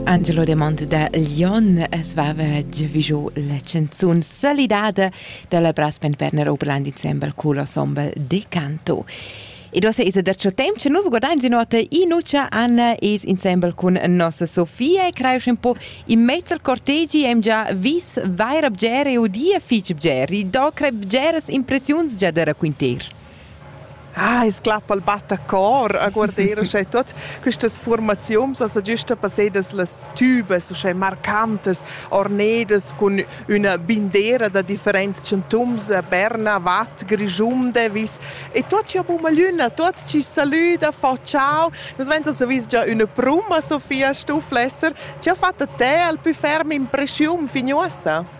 Angelo Demont da Lyon es vava giavigio la canzun Solidade dalla Brassband Berner Oberland insieme col ensemble Decanto. Ed ossa es da ciò temp che nus guardain si nota Inuccia Anna es insieme con nossa Sofia e creio un po' in mezzo cortegi hem già vis vair bgere o dia fich bgeri, do creb bgeres impressiuns già da raquinter. Ah, es clappa'l battacor a guarder uschè tuot quistas fuormaziuns as agiusta passedas las tübas uschè marcantas, ornedas cun üna bindera da differents chantums, Berna, Vatt, Grischunde, vis. E tuot chi ho bumagliüna, tuot chi salüda, fa ciao. Nus vains as vis già üna pruma, Sofia Stufflesser. Chi ha fat da te al pü ferm impreschiun fin uossa?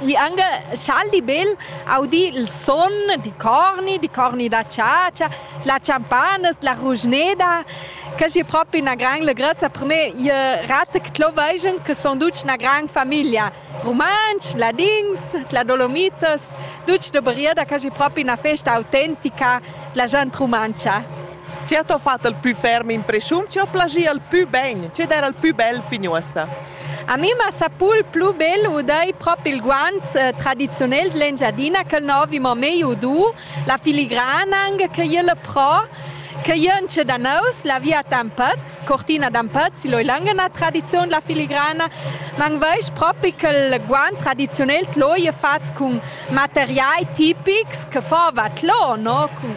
Igl angal scha'l di bel audi il son di corni, di corni da chatscha, la champanas, la ruschneda, que es propi üna grand legrezza per me. Ie rata che t'lo veigian che sun tuts üna grand famiglia. Rumantsch, ladins, la Dolomitas, tuts da Bariera, que es propi üna festa autentica d'la gent rumantscha. Chi ha to fat il pü ferm impreschiun, chi ho plagi il pü ben, chi d'eira il pü bel fin uossa? A mi m'ha sapul plü bel uder prop il guants eh, tradiziunel d'Engiadina ch'el no vi mo mei udu, la filigranang che jel pro, che jön tschè da nous, la via d'Ampaz, Cortina d'Ampaz, loi langena tradiziun la filigrana, man veis propi quel guant tradiziunel tloi è fat cun materiai tipics che fova tlò, no? Cun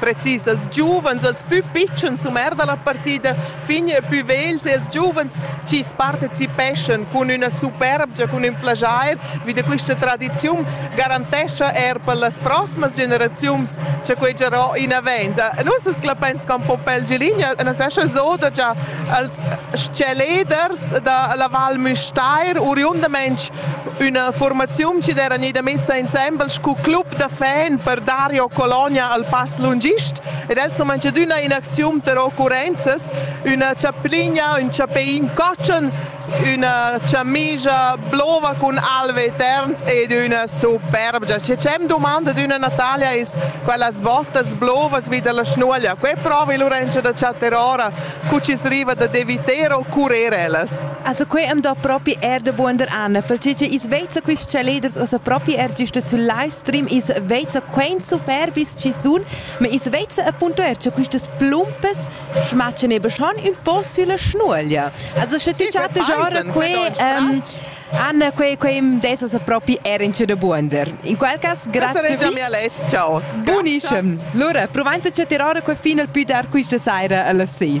precis els giuvens, els pü pitschens Sumer da la partida, fin pü vegls e els giuvens chi's partecipeschan cun üna superbgia, cun ün plaschair vi da quista tradiziun garantescha eir per las prosmas generaziuns cha quai giarà inavant. Nus as clapains con Pompel Giligna, nus eschan zoda già als chaleders da la Val Müstair, oriundamaing Üna formaziun chi d'eira gnida messa insembel scu club da fan per Dario Colonia al pass lungist ed els han manchadüna in acziun per occurrenzas, üna chapligna, ün chapein cotschen, üna chamija blova cun Alve Terns ed üna superbgia. Schi c'è domanda d'üna Natalia es quellas bottas blovas vi dalla schnuoglia. Que provi Lorenzo da chattar ora cu chi riva da deviter o curer ellas. Also quei am do propi er de buonder an, perciò che is vezza quist chaliders ossa propi er giusta sul live stream, is vezza quein superbis ci sun, ma is vezza appunto er che quistas plumpas schmatschen eben schon un po sulla schnuoglia. Also sche tu chatte genre quei ähm, Anna, quei quei adesso sa propi er in de buonder. In quel cas grazie vi. Ciao. Buonissimo. Allora, provainza che tirare quei fino al più dar questa sera alla 6.